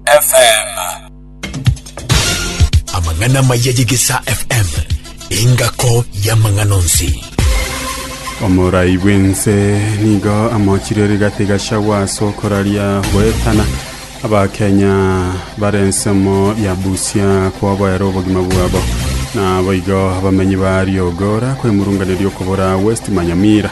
FM. Amang'ana amaya y'Egesaa FM, engako y'amang'ana onsi. Omorai bw'ense nigo amochire rigati gachagwa ase okoraria goetana abakenya bare ensemo ya Busia koboera obogima bwabo na boigo abamenyi ba Riogora kwemurunganeria okobora West Manyamira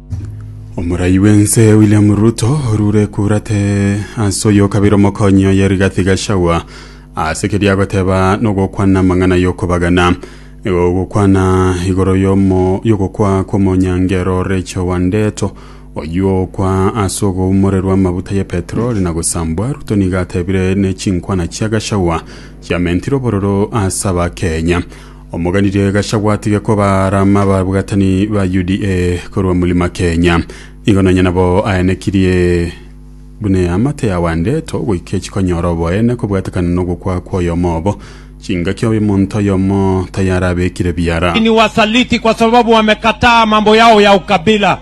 Omorai bw'ense William Ruto orure kurate ase oyo kabere omokonyi oye Rigathi Gachagua ase keria agoteba nogokwana amang'ana y'okobagana igo ogokwana igoro y'omo y'ogokwa kw'omonyangero Rachel Wandeto oyio okwa ase ogoumorerwa amabuta ya petroli na gosambwa Ruto nigo atebire ne chinkwana chia Gachagua chiamentire obororo ase abakenya Omogani ria egachagwa atige kobaarama ababwatani ba UDA korwa Mulima Kenya. Nigo nonya nabo aenekirie buna eamate ya Wandeto goika echikonyora oboene kobwatekana nogokwa kw'oyomo obo. Chingaki omonto oyomo tayarabekire biara. Ninyi wasaliti kwa sababu wamekataa mambo yao ya ukabila.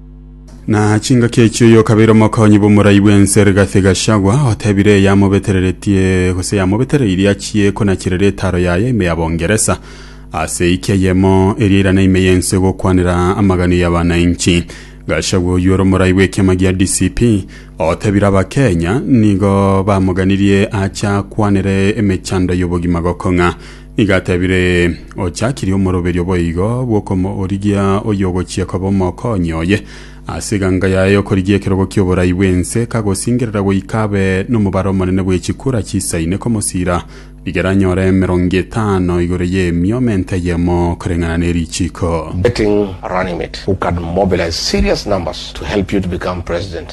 Na chingaki echio yokabeire omokonyi bw'omorai bw'ense Rigathi Gachagua otebire eyamobetereretie gose yamobetereirie achie konacherera etaro yaye ime ya Bongeresa ase eki eyemo eria irana ime y'ense gokwanera amagani ya bananchi. Gachagua oyio ore omorai bw'ekiama gia DCP otebire Abakenya nigo bamoganirie acha akwanere emechando y'obogima gokong'a. Nigo atebire, Ochakirie omoroberio boigo bw'okomoorigia oyogochia koba omokonyi oye. Ase eganga yaye y'okorigia ekerogo ki'oborai bw'ense, kagosingerera goika abe nomobaro omonene bwe chikura chisa ine komosira, rigera anyore emerongo etano igoro y'emioma ente eyemo koreng'ana ne richiko. Betting Runnymede who can mobilize serious numbers to help you to become president.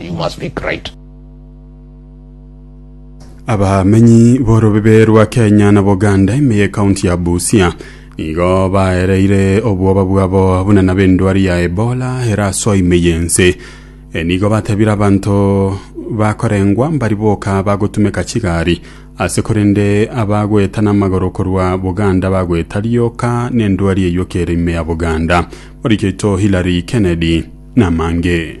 You must be great. Abamenyi b'orobibe rwa Kenya na Buganda ime y'ekaunti ya Busia nigo baereire obwoba bwabo buna nabo endwari ya Ebola erasoa ime y'ense. E, nigo batebire abanto bakorengwa mbari boka bagotumeka chigari ase korende abagoeta n'amagoro korwa Buganda bagoeta rioka n'endwari eyokere ime ya Buganda. Morikeito Hilary Kennedy namange.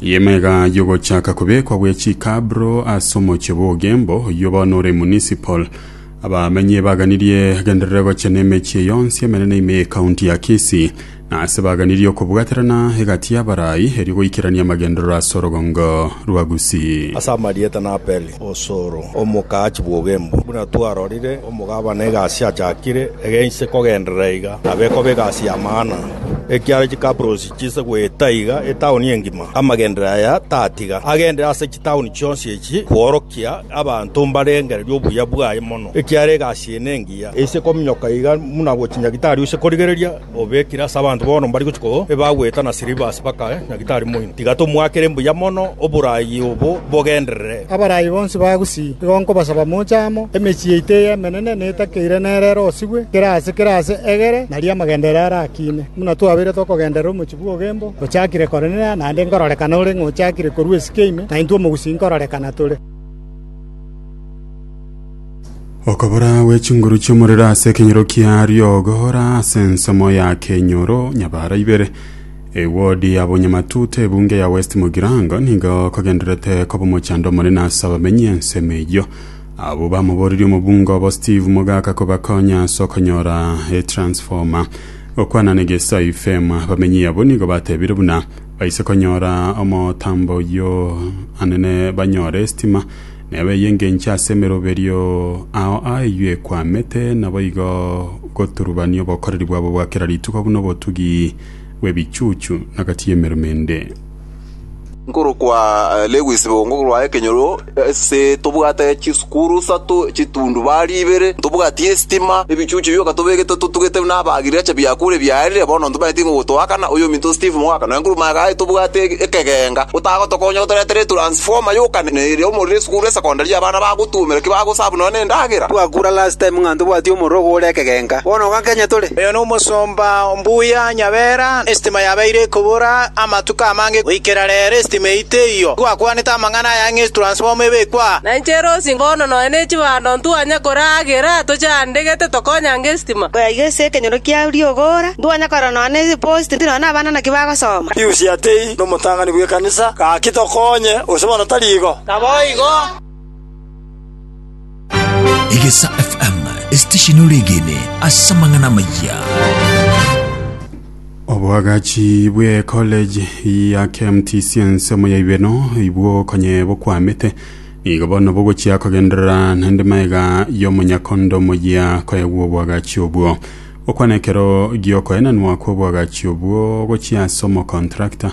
Y'emega y'ogochaka kobekwa gwe chikabro ase omochie bw'ogembo, oyio bono ore municipal. Abamenyi baganirie genderere gochia n'emechie yonsi emenene ime y'ekaunti ya Kisii, na ase baganirie okobwaterana egati y'abarai erio goikerania amagenderero ase orogongo rwa Gusii. Ase amarieta naperi osoro omokaachi bw'ogembo. Buna twarorire, omogabana egasi achakire, egeinse kogenderera iga nabe ekoba egasi ya maana. Ekiara chikabros chinse goeta iga etaoni engima, amagenderero aya tatiga agenderere ase chitaoni chionsi echi kworokia abanto mbarengererie obuya bwaye mono, ekiagera egasi eye nengiya, eise kominyoka iga buna gochia nyagitari ose korigereria obekire ase abanto bono mbari gochia koo ebagoeta na silivasi baka nyagitari moino. Tiga tomoakere mbuya mono oboraai obo bogenderere. Abaraai bonsi ba Gusii, igo nkobasaba moche amo, emechie yaito eye emenene netakeire nere ere osigwe, kera ase kera ase egere, nario amagenderero are akine. Buna twabeire tokogenderera omochie bw'obogembo, ochakire Kornelio, naende nkororekana ore ng'a ochakire korua esike ime, na intwe omogusii nkororekana tore. Okobora gwe chinguru chi'omorero ase ekenyoro kia riogo ra ase ensemo ya kenyoro nyabara ibere. Ewodi ya Bonyamatuta ebunge ya West Mugirango nigo kogendererete koba omochando omonene ase abamenyi ensemo eyio. Abwo bamoboririe omobunge obo Steve Mogaka kobakonya ase okonyora etransformer. Gokwana na egeso a Yufemu, abamenyi abo nigo batebire buna baise konyora omotambo oyio anene banyore esitima, na ewe eyengenche ase emeroberio ao ayio ekwamete, naboigo goturubania obokoreri bwabo bwa kera rituko buna obotugi bw'ebichuchu na gati y'emeremo ende. Nkorokwa Lewis bo nkorokwa ekenyoro ase tobwate chisukuru isato chitundubari ibere ntobwati esitima ebichuchu bioka tobegete totugete buna aba agriculture biakure biarire bono ntobaeti nigo gotoakana oyo ominto Steve moaka nonya nkorwa omanyete aye tobwate ekegenga otagotokonya otoretere transformer yoka na ere omorero esukuru esecondary abana bagotuomera ki bagosabu nonya na endagera. Twakura last time ng'a ntobwati omorero ogo ore ekegenga bono iga Kenya tore. Oyo nomosomba. Mbuya Nyabera, esitima yabeire ekobora amatuko amange goikera rero esitima eyio teiyo. Twakwanete amang'ana aya ng'esi transformer ebekwe aa. Na inche Rosi bono nonya ne chibando ntwanya koragera toche ande gete tokonyange esitima. Koya iga ase ekenyoro kia riogora ntwanya korora nonya ne post nonya na abana naki bagosoma. Pius Yatei nomotang'ani bw'ekanisa, Gaki tokonye, gose bono tari igo? Naboigo. Egesa FM, esitesheni oregene ase amang'ana amayia. Obwagachi bwe college ya KMT Science omoyaibeno ibwo konye bokwamete nigo bono bogochia kogenderera naende maega y'omonyakondo omoyia koegwa obwagachi obwo okwana ekero giokoenanwa kw'obwagachi obwo gochia ase omokontrakta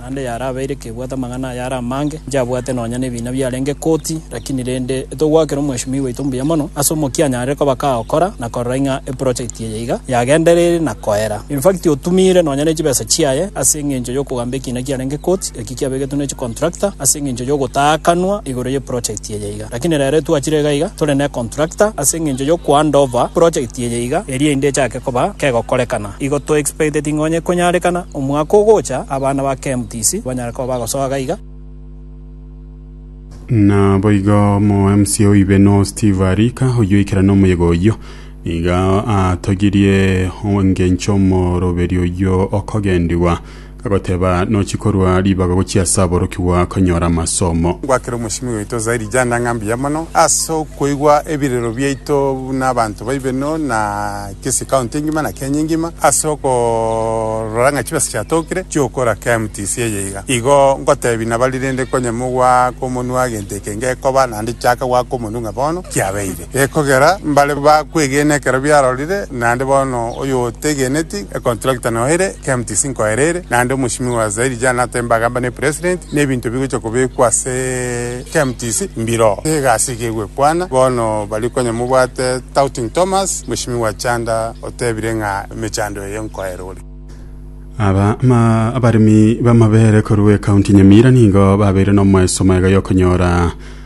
naende yarabeire kebwate amang'ana aya are amange, inche abwate nonya nebiina biarenge koti, lakini rende togoakera omweshimiwa oito mbuya mono ase omokia anyarire koba kagokora na korora ing'a eprojekti eye iga yagendereire na koera. Infact otumiire nonya nechibesa chiaye ase engencho yokogamba ekiina kiarenge koti, eki kiabegetwe ne chicontractor ase engencho yogotaakanwa igoro yeprojekti eye iga. Lakini rero etwachire iga iga tore necontractor ase engencho yokohandover projekti eye iga eria inde echake koba kegokorekana. Igo to expecteti ng'a onye konyarekana omwaka ogocha abana ba KMTC banyare koba bagosoa gaiga. Naboigo omo mca oibe no Steve Arika oyio oikera nomoyega oyio niga atogirie engencho omoroberio oyio okogendigwa Agoteba, Nochi korwa ribaga gochia ase aborokigwa konyora amasomo. Ngwakere omochimi oito zaidi janda ng'a mbuya mono ase okoigwa ebirero biaito buna abanto baibe no na Kisii county engima na Kenya engima ase okorora ng'a chibesa chiatokire chiokora KMTC eye iga. Igo ngotebi nabari rende konye mogwaka omonwa gento eke ngekoba nande chiaka gwaka omonu ng'a bono kiabeire. Gekogera mbare bakwegena ekero biarorire, naende bono oyotegeneti econtractor noyo ere, KMTC nkoyo ere ere, naende omosimigwa wa Zaire Jan Atemba agamba ne president, nebinto bigocha kobekwa ase KMTC mbiroo, egasi iga egwekwana bono baria konya mobwate Touting Thomas, mosimigwa Chanda otebire ng'a emechando eye nkoyo ere ore. Aba ma abaremi b'amabeere korwa ecounty Nyamira nigo babeire nomoeso mwega y'okonyora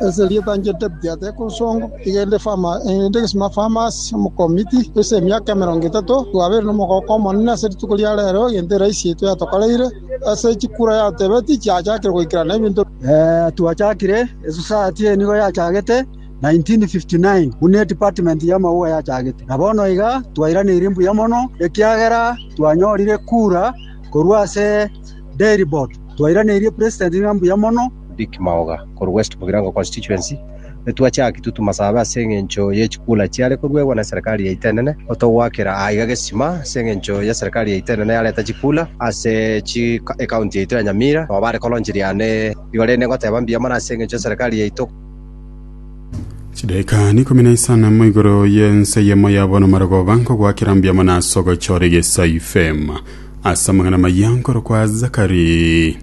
Ase erieta inche David ateke ensongo, igende Fama, egende egesima Famas, omokomiti, ase emiaka emerongo etato, twabeire nomogooko omonene ase rituko ria reero, egento eraisi yaito yatokoreire, ase chikura yatebeti chiachakire goikerana ebinto. Twachakire esosayati eye nigo yachagete 1959 buna edepartment y'amauga yachagete, na bono iga twairaneirie mbuya mono ekiagera twanyorire kura korwa ase Dairy Board, twairaneirie president ng'a mbuya mono. Dick Maoga korwa West Mugirango Constituency, Nitwachaki tutu masabe ase engencho ye chikula chiare koruegwa ne serikali yaito enene, otogoakera aiga gesima ase engencho ye serikali yaito enene yareta chikula ase chi ecounty yaito ya Nyamira nabo bare koronchi riane igo rende ngoteba mbuya mono ase engencho ye serikali yaito. Chidaeka n'ikomi na isano mo igoro y'ense eyemo ya bono marogoba nkogoakera mbuya mono ase ogochora egesaife. Ase amang'ana amaya nkorokwa Zakari.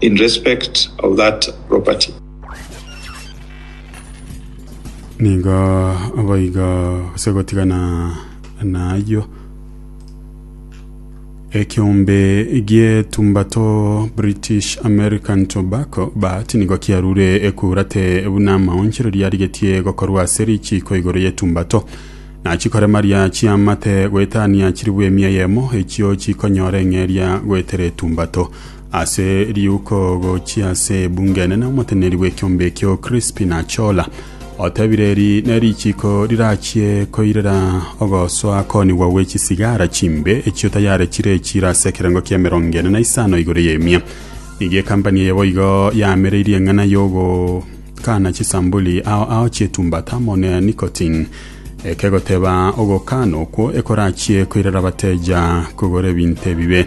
in respect of that property. Nigo boigo gose gotigana nayio ekiombe gietumbato British American Tobacco but nigo kiarure ekurate buna amaonchereria arigetie gokorwa ase richiko igoro yetumbato nachikoremaria chiamate goetania chiribwe emia yemo echio chikonyora eng'eria goetera etumbato Ase riuko gochia ase ebungo enene omoteneneri bw'ekiombe ekio Crispin Achola otebire eri nerichiko rirachie koirera ogosoa konigwa gwe chisigara chimbe echio tayare chire echiro ase ekerengo kia emerongo ene na isano igoro y'emia. Nigo ekampani eye boigo yamereirie eng'ana y'ogokana chisambuli ao ao chietumbata amo ne nicotine ekegoteba ogokana okwo ekorachie koirera abateja kogora ebinto ebibe.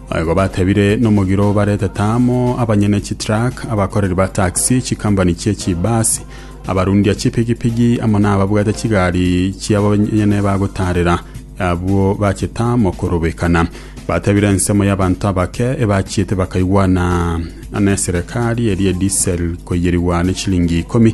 Naboigo batebire nomogiro baretete amo abanyene chitruck, abakoreri ba taxi, chikambani chie chibasi, abarundia chipigipigi amo nababwate chigari chiabo banyene bagotaarera abwo bachete amo korobekana. Batebire ensemo y'abanto abake ebachiete bakaigwana neserekari eria edisel koiyerigwa nechilingi ikomi,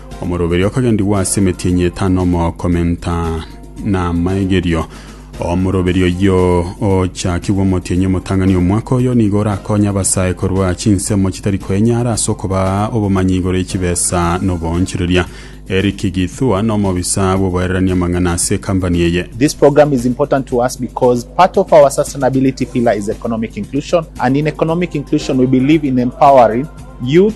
Omoroberio okagendigwa ase emetienyi etano omokomenta namaegerio. Omoroberio oyio ochakigwe omotienyi omotang'ani omwaka oyo nigo orakonye abasae korwa chinsemo chitari koenyara ase okobaa obomanyi igoro ye chibesa na oboonchoreria. Eric Githua nomobisa bw'oboererania amang'ana ase ekambani eye. This program is important to us because part of our sustainability pillar is economic inclusion and in economic inclusion we believe in empowering youth,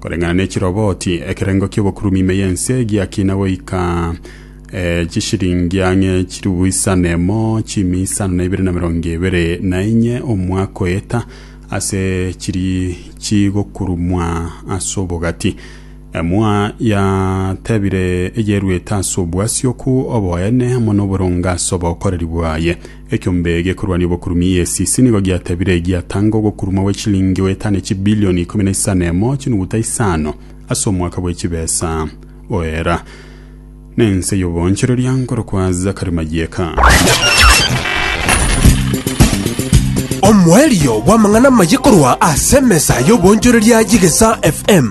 Koreng'ana ne chiroboti, ekerengo ki'obokurumi ime y'ense giakina goika eh, chishiringi ang'e chilifu isa nemo chimi isano na ibere na mirongo ebere na enye omwaka oyeta ase chiri chigokurumwa ase obogati. Emua yatebire eyeruete ase obwasioku oboene amo noboronge ase obokoreri bwaye. Ekiombe gekorwania obokurumi EACC nigo giatebire giatanga ogokuruma gwe chilingi goeta ne chibilioni ikomi na isano emo chinuguta isano ase omwaka bwe chibesa oera na ense y'oboonchoreria nkorokwa Zachary Mayieka. Omoerio bw'amang'ana amaye korwa ase emesa y'oboonchoreria y'Egesa FM.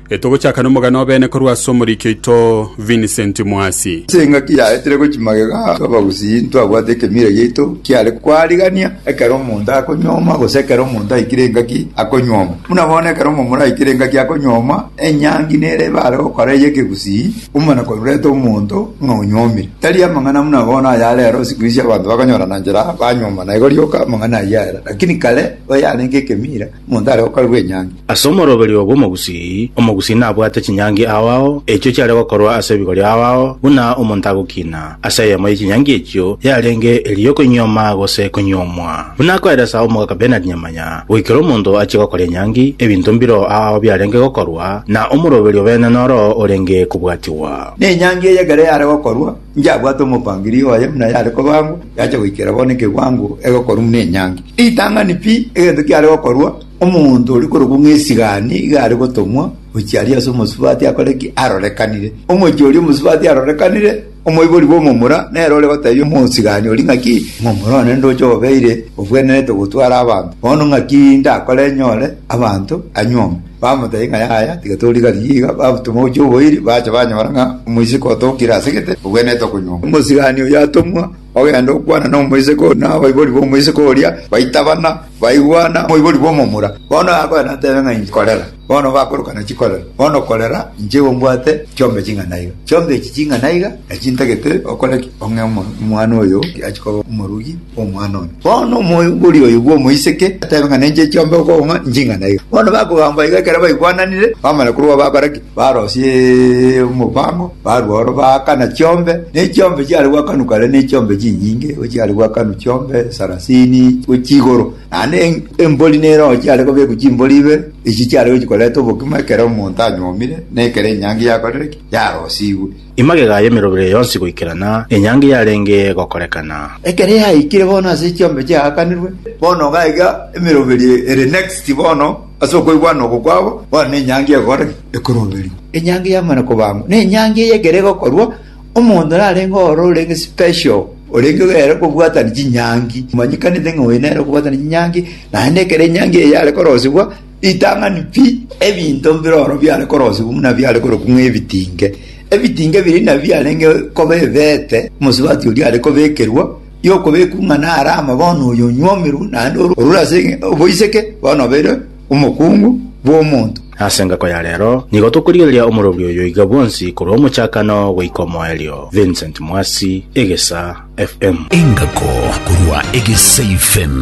Getogochaka nomogano obene korwa ase omoriki oito Vincent Mwasi. Ase engaki yaye tiri gochia magega a abagusii ntwabwate ekemira giaito kiare kwarigania ekero omonto akonyuoma gose ekero omonto aikire engaki akonyuoma. Buna bono ekero omomura aikire engaki akonyuoma, enyangi nere ebare gokora eye ekegusii omana korurete omonto buna onyuomire. Tari amang'ana buna bono aya rero sikuizi abanto bakonyorana nchera banyuomana igo rioka amang'ana ayio ere. Lakini kare oyarenge ekemira, monto are gokorerwa enyangi. Ase omoroberio bw'omogusii, omogusii nabwate chinyangi ao ao echio chiare gokorwa ase ebigori ao ao, buna omonto agokina ase eyemo ye chinyangi echio yarenge eria y'okonyioma gose konyiomwa. Buna akoeresa Omogaka Bernard Nyamanya, goikera omonto achie gokora enyangi, ebinto mbiro ao ao biarenge gokorwa, na omoroberio bene noro orenge kobwatigwa. Nenyangi eyekere yare gokorwa, Inch'abwate omopangiria oye buna yare kobangwa, yacha goikera bono ekewango egekorwa buna enyangi. Ritang'ani pi egento kiare gokorwa, omonto oria korokwa ng'a Esigani iga are gotomwa gochia aria ase omosubati akore ki? Arorekanire. Omochie oria omosubati arorekanire, omoibori bw'omomura nere ore goteebia omosigani oria ng'a ki? Omomura one ndoche obeire obwenerete gotwara abanto. Bono ng'aki ndakore nyore abanto anyuome? Bamotebia ng'a, Yaya, tiga torigarie iga. Babatoma gochia oboiri, bacha banyora ng'a omoiseke otookire ase gete, obwenerete okonyongwa. Omosigani oyio atomwa, ogenda okwana nomoiseke oyo, na abaibori b'omoiseke oria baitabana, baigwana omoibori bw'omomura. Bono akoe natebe ng'a inche, Korera! Bono bakoroka na chikorera. Bono korera, inche igo mbwate chiombe ching'ana iga. Chiombe echi ching'ana iga, nachintagete okore ki? Ong'e omwana oyo achie koba omorugi. omwana one. Bono omogori oyo bw'omoiseke agateba ng'a nenche chiombe okong'a nching'ana iga. Bono bakogamba iga ekero baigwananire, bamanya korwa abo bakora ki? Barosia omobaang'o, barua oro baakana chiombe, ne chiombe chiare gwakanwa kare ne chiombe chinyinge, chiare gwakanwa chiombe sarasini gochia igoro. Naende embori nere oo chiare kobekwa chimbori ibe, echi chiare gochia koreta obokima ekero omonto anyuomire, na ekero enyangi yakorire ki? Yarosigwe. Emagega y'emerobere yonsi goikerana enyangi yarenge gokorekana. Ekero yaikire bono ase echiombe chiaakanirwe, bono iga aiga emeroberi ere next bono ase okoigwana oko kwabo, bono nenyangi egokora ki? Ekoroberigwa. Enyangi yamana kobangwa, nenyangi eye ekero egokorwa, omonto narenge oro orenge special, orenge ere kobwatani chinyangi, omanyekanete ng'a oyo nere okobwatana chinyangi, naende ekero enyangi eye yare korosigwa, Ritang'ani pi, ebinto mbire oro biare korosibwa buna biare korokwa ng'a ebitinge. Ebitinge ebi riina biarenge koba ebeete omosubati oria are kobekerwa, y'okobekwa ng'a nare amo bono oyo onywomirwe, naende ore orure ase oboiseke bono obeire omokungu bw'omonto. Ase engako ya rero, nigo tokorigereria omorobio oyo iga bwonsi korwa omochakano goika omoerio. Vincent Mwasi, Egesaa. FM. Engako korwa egesaifm.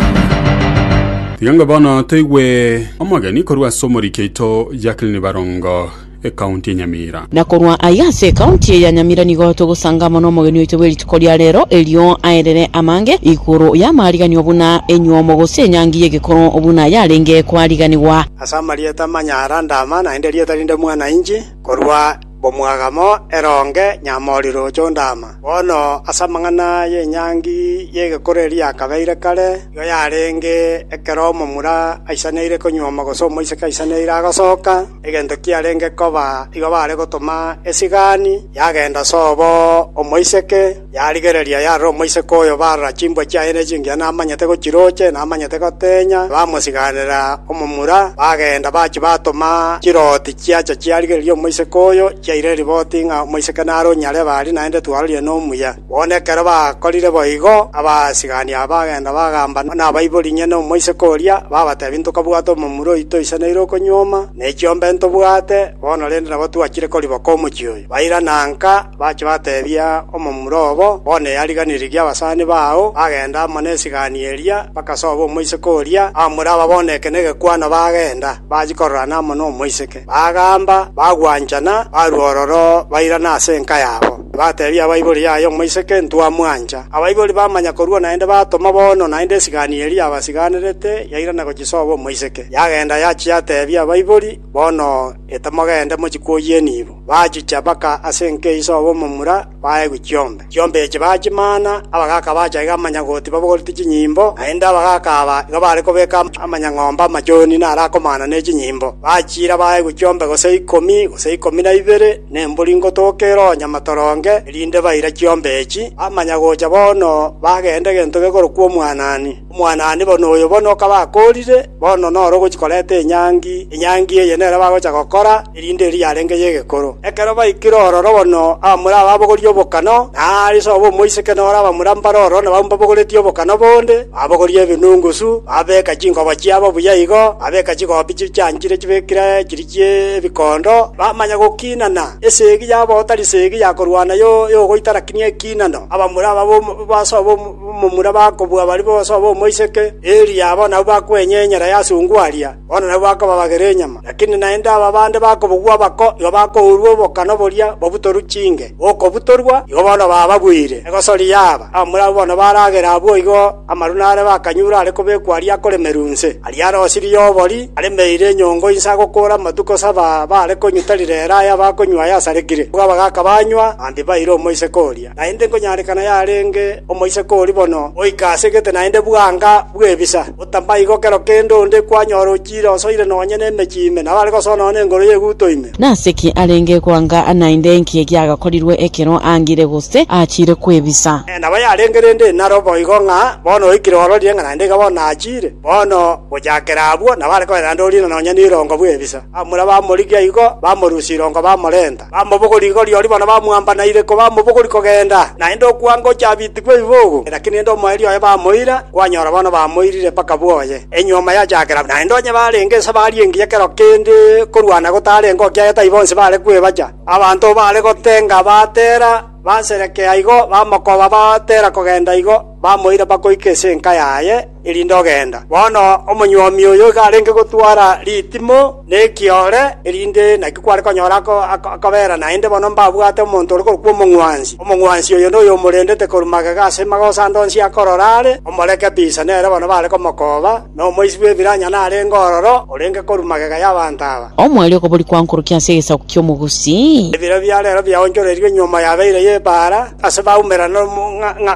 Tiga ng'a bono toigwe omogeni korwa ase omoriki oito Jacqueline Barongo, ekaunti ya Nyamira. Na korwa aiga ase ekaunti eye ya Nyamira nigo togosanga amo nomogeni oito bwe rituko ria rero, erio aerere amange igoro y'amaariganio buna enyuomo gose enyangi y'egekoro buna yarenge kwariganigwa. Ase amarieta manyara Ndama, naende erieta rinde Mwana-inchi, korwa. Mbomwagamo eronge nyamoriro chondama. Bono ase amang'ana y'enyangi y'egekoro eria yakabeire kare, nigo yarenge ekero omomura aisaneire konyuoma gose omoiseke aisaneire agosoka, egento kiarenge koba igo bare gotoma esigani yagenda sobo omoiseke, Yarigereria yarora omoiseke oyo barora chimbwa chiaye ne chingiya namanyete gochirooche namanyete gotenya bamosiganera omomura bagenda bachia batoma chiroti chiacha chiarigereria omoiseke oyo chiaira eriboti ng'a omoiseke nare onyarebe aria naende twarorie nomuya bono ekero bakorire boigo abasigani aba bagenda bagamba nabaibori inye ne omoiseke oria babatebia ntokabwate omomura oito oiseneire okonyuoma ne chiombe ntobwate bono rende nabo twachire koriboka omochie oyo bairana nka Bachia batebia omomura obo, Bono eyariganirie eria abasani bao bagenda amo nesigani eria, mpaka sobo omoiseke oria amure aba bono eke negekwano bagenda, bachia kororana amo nomoiseke. Bagamba, bagwanchana, barua ororo, bairana ase enka yabo. Tibatebia abaibori, Yaya omoiseke, ntwamwancha. Abaibori bamanya korua naende batoma bono, naende esigani eria yabasiganerete, yairana gochia sobo omoiseke. Yagenda yachia yatebia abaibori, Bono etemogende mochia kwoyieniigwa. bachicha baka ase enkeiso ao omomura baegwe chiombe. Chiombe echi bachimana, abagaaka bacha iga amanyagoti babogorete chinyimbo, naende abagaaka aba igo bare kobeka amanyang'ombe amachoni narakomana ne chinyimbo, bachiira baegwe chiombe gose ikomi, gose ikomi na ibere, na embori ngotoka eroo nyamatoronge, erinde baira chiombe echi, bamanya gocha bono bagenda egento gekorokwa Omwanani. Omwanane bono oyo bono okaba akoorire, bono noro ogochia koreta enyangi, enyangi eye nere bagocha gokora, erinde eria yarenge y'egekoro. Ekero baikire ororo bono abamura babogorie obokano, na aare sobo omoiseke na ore abamura mbare ororo nababwo mbabogoretie obokano bonde, babogoria ebinungusu, babeka chingoba chiabo buya igo, babeka chigobi chichaanchire chibekire chiri chi'ebikondo, bamanya gokiinana, esegi yabo otari segi ya korwana yo- y'ogoitara kinia ekiinano, abamura ababwo basobe omo. Momura bakobua baria bonsi abamoiseke, erio abwo nabwo bakwenya enyera y'asungu aria, bono nabwo bakobabagera enyama. Lakini naende aba bande bakobogwa abako, igo bakourwa obokano boria babutorwe chinge, bokobutorwa, igo bono bababuire egosori yaaba. Abamura abwo bono baragere abwo igo, amaru nare bakanyure are kobekwa aria akoremerwa inse, aria are osirie obori, aremeire enyongo inse agokora amatuko saba, baare konyuta rirere aya bakonywa ayasarekire, bwaba gaka banywa, bambi baire omoiseke oria. naende nkonyarekana yarenge omoiseke oria bono goika ase gete naende bwanka bw'ebisa, otamaigo kero kende onde kwanyora ochiire osoire nonya nemechi ime, nabo are gosoa nonya nengoro y'eguto ime. Nase ki arenge gwanka naende enki egiagakorirwe ekero aangire gose aachiire kw'ebisa? Nabo yarenge rende naro boigo ng'a bono oikire ororire ng'a naende iga bono naachiire. Bono gochakera abwo nabo are koira naende orire nonya n'irongo bw'ebisa. Bamura bamorigia igo, bamorusia irongo bamorenta. Bamobogori igoro ri'oria bono bamwambanaire kobamobogori kogenda, naende okwango oche abitigwe ebibogo. Lakini inde omoerio oye bamoira, kwanyora bono bamoirire mpaka bwoye, enyuoma yachakera. Naende onye barenge nse barie engiya kero kende korwana gotarenge okia aye taibo nse bare kwebacha. Abanto baare gotenga batera, baserekea igo, bamokoba batera kogenda igo. bamoira bakoika ase enka yaye, erinde ogenda. Bono omonyuomi oyo iga arenge gotwara ritimo na ekiore, erinde naki kware konyora ako- ako- akobera naende bono mbabwate omonto ore korokwa omong'wansi. Omong'wansi oyo noyomorendete korwa magega ase magoso ande onsi akorora are, omoreke bisa nere bono bare komokoba, na omoichi bw'ebiranya narenge ororo orenge korwa magega y'abanto aba. Omwaria okobori kwankorokia ase egesaku ki'omogusi. Ebiro bia rero biaonchoreirwe enyuoma yabeire y'ebaara, ase baumera na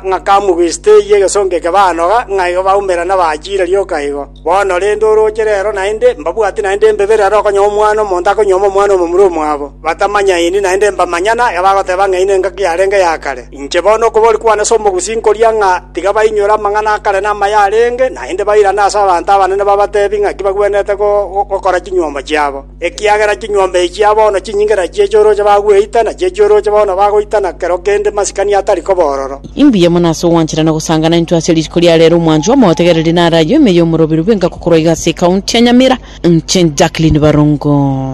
ng'akamu gwista eyio egesongo eke banoga, ng'a igo baumera na bachiire rioka igo. Bono rende orooche rero naende mbabwati naende mbe birero okonyora omwana omonto akonyuoma omwana omomura omwabo, batamanyaini naende mbamanya, na ekabagoteba ng'a ine engaki yarenge ya kare. Inche bono okobori kwane ase omogusi nkoria ng'a tiga bainyore amang'ana akare na amaya arenge, naende bairane ase abanto abanene babateebie ng'aki bagwenerete gokora chinyuomba chiabo, ekiagera chinyuomba echia bono chinyinge na chi'echioroche bagweita, na chi'echioroche bono bagoita na kero kende masikani atari kobororo. Imbuya mono ase ogwancherana gosangana intwe ase rituko ria reero omwanchwa omotegereri nare ayio ime y'omoroberu bw'enka gokorwa iga ase ekaunti ya Nyamira. Inche Jacqueline Barongo.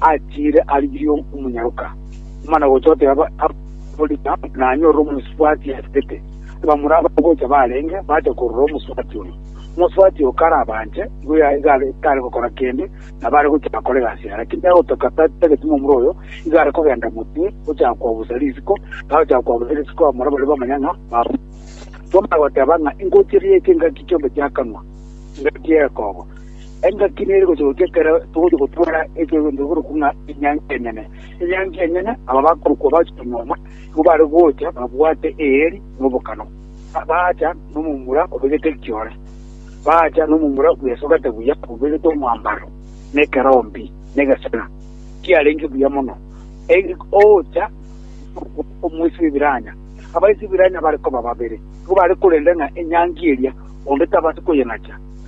achiire arigirie omonyaroka, omana gocha oteba aborina nanyorire omosubati asibete. Abamura abagocha barenge bacha korora omosubati oyo. Omosubati oyo kare abanche, igo ya- iga are- tare gokora kende, nabo are gocha akore egasi yaye. Lakini nigo agotoka ta- tageti momura oyo, igo are kogenda motwe, gocha koabusa risiko, agocha koabusa risiko abamura baria bamanya ng'a babu. Tomana goteba ng'a ingochi eye eke engaki chiombe chiakanwa, engaki y'ekogo. Engaki nere gochia goika ekero togochia gotwara egento ekorokwa ng'a Enyancha Enyene. Enyancha Enyene aba bakorokwa bachia nyuma, nigo bare gocha babwate eeri na obokano. Ba- Baacha nomomura obegete ekiore, baacha nomomura bwesogete buya, obegete omwambaro, na ekerombi, na egesena, kiarenge buya mono. Eri ocha omoisi bw'ebiranya, abaisi b'ebiranya bare koba babere, nigo bare korenda ng'a enyancha eria onde tabati koyeng'acha.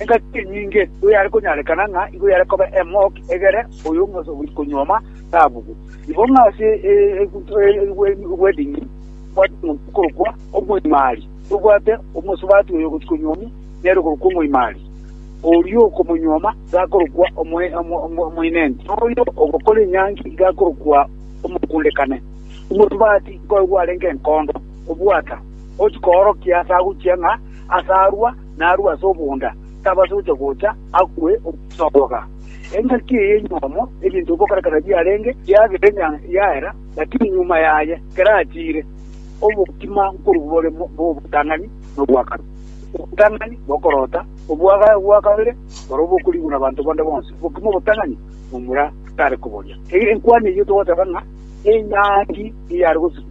Engaki enyinge nigo yare konyarekana ng'a igo yare koba emok egere oyo omosaburi konyuoma tabugwe. Igo ng'a ase eweding'ini obwate omonto okorokwa omoimari, tobwate omosubati oyo ogochia konyuomwa nere okorokwa omoimari, oria okomonyuoma iga akorokwa omoinenti, na oyo ogokora enyangi iga akorokwa omokundekane. Omosubati nkoyo gwarenge enkondo, obwata, ochia koorokia ase agochia ng'a ase arua, narue ase obonda, tabasa gochia gocha akwe omogosogoka. Engaki eye enyomo, ebinto bikokora ekero biarenge biagera enyanga yaera, lakini nyuma yaye kerachire, obokima nkorwa bore bw'obotang'ani na obwakare. Obotang'ani bokorota, obwakare bwa kabere borobwo bokorigwa nabanto bande bonsi, obokima obotang'ani momura tare koboria. Enkwani eyio togoteba ng'a enyangi eyare gosikwa.